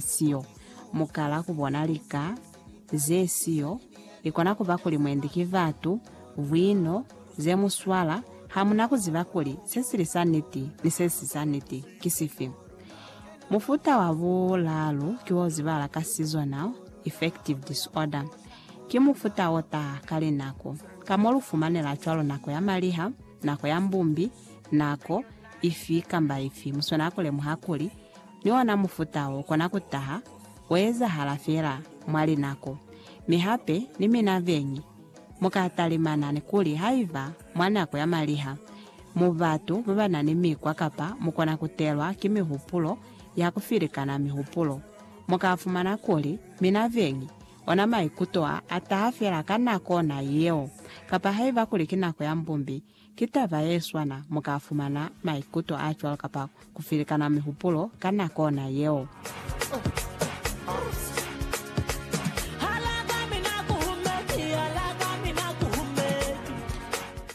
siyo. Mu kala ku bona lika ze siyo. I kona ku ba kuli mwendi ki batu, bwino, ze mu swala, ha mu na ku ziba kuli se si li sa niti ni se si sa niti ki sifi. Mufuta wa bulaalu ki wo zibala ka seasonal affective disorder. Ki mufuta o taha ka linako, ka mo lu fumanela cwalo nako ya maliha, nako ya mbumbi, nako ifi kamba ifi. Mu swanela ku lemuha kuli ni ona mufuta wo kona ku taha wo ezahala fela mwa linako. Mi hape, ni mina beñi, mu ka talimana ni kuli haiba mwa nako ya maliha mu batu ba ba na ni mikwa kapa mu kona ku telwa ki mihupulo ya ku filikana mihupulo, mu ka fumana kuli mina beñi ona maikuto a, a taha fela ka nako ona yeo. Kapa haiba kuli ki nako ya mbumbi, Ki taba ye swana, mu ka fumana maikuto a cwalo kapa ku filikana mihupulo ka nako na yeo.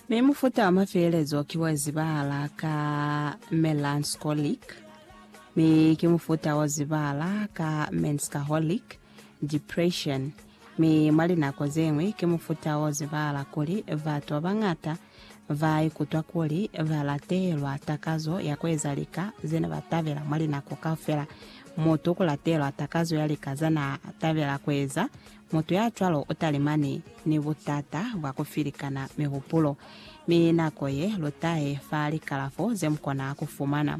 Mi mufuta wa mafielezo ki wa zibahala ka melancholic, mi ki mufuta wa zibahala ka menskaholic, depression, mi mwa linako ze ñwi ki mufuta o zibahala kuli batu ba bañata ba ikutwa kuli ba latelwa takazo ya ku eza lika ze ne ba tabela mwa linako kaufela. Mutu ku latelwa takazo ya lika za n'a tabela ku eza, mutu ya cwalo u talimani ni butata bwa ku filikana mihupulo, mi nako ye lu tahe fa likalafo ze mu kona ku fumana.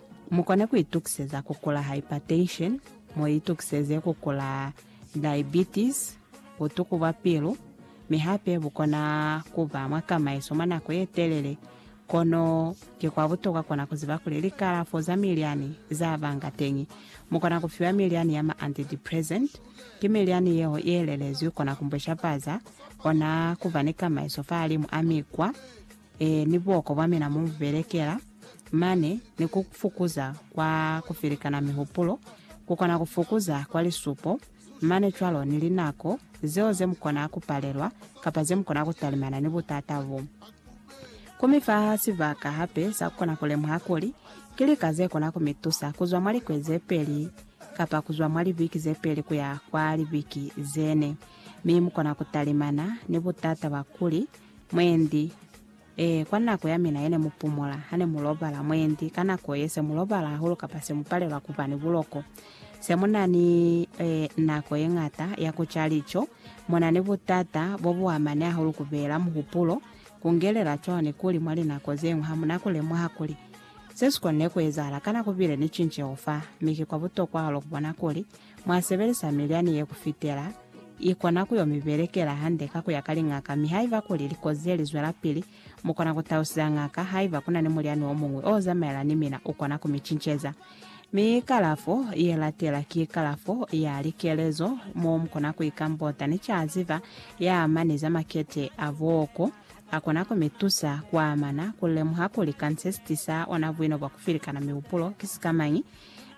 Mu kona ku itukiseza ku kula hypertension, mu itukiseze ku kula diabetes, butuku bwa pilu, mi hape bu kona ku ba mwa kamaiso mwa nako ye telele. Kono ki kwa butokwa kona ku ziba kuli likalafo za milyani za banga teñi. Mu kona ku fiwa milyani ya ma antidepressant. Ki milyani yeo ye lelezwi kona ku mbweshafaza, kona ku ba ni kamaiso fahalimu a mikwa. Ee, ni buoko bwa mina mu belekela mane, ni ku fukuza kwa ku felikana mihupulo, ku kona ku fukuza kwa lisupo mane cwalo, ni linako zeo ze mu kona ku palelwa kapa ze mu kona ku talimana ni butata bo. Ku mi fa sibaka hape sa ku kona ku lemuha kuli ki lika ze kona ku mi tusa ku zwa mwa likwezi ze peli kapa ku zwa mwa libiki ze peli ku ya kwa libiki ze ne, mi mu kona ku talimana ni butata bwa kuli Mwendi, Ee, kwa nako ya mina yene mupumula, hane mulobala, mwendi, ka nako ye, se mulobala hahulu kapa se mupalelwa kuba ni buloko, se muna ni e, nako yeñata ya kuca lico, muna ni butata bobuamani hahulu kubeela muhupulo, kungelela cwalo ni kuli mwa linako zeñwi hamuna kulemuha kuli se sikonile kuezahala kana kubile ni cinceho fa, mi ki kwa butokwa hahulu kubona kuli mwa sebelisa milyani ye ku fitela i kona ku yo mi belekela hande ka ku ya ka liñaka mi haiba kuli likozi ze li zwelapili, mu kona ku tausiza ñaka haiba ku na ni mulyani wo muñwi o zamaela ni mina u kona ku mi cinceza. Mi kalafo ye latela ki kalafo ya likelezo mo mu kona ku ikambota ni caziba ya amani za makete a booko. A kona ku mi tusa ku amana ku lemuha kuli kanse sitisa ona buino bwa ku filikana mihupulo ki sikamañi.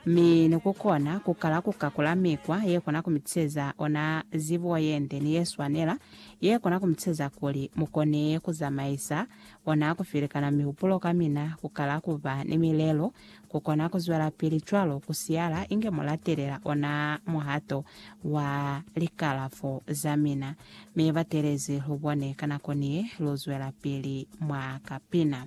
Mi ni ku kona ku kala ku kakula mikwa ye kona ku mi tiseza ona zibo ye nde ni ye swanela, ye kona ku mi tiseza kuli mu kone ku zamaisa ona ku filikana mihupulo ka mina, ku kala ku ba ni milelo, ku kona ku zwelapili cwalo ku siyala inge mu latelela ona muhato wa likalafo za mina. Mi batelezi lu bone ka nako ni ye lu zwelapili mwa ka pina.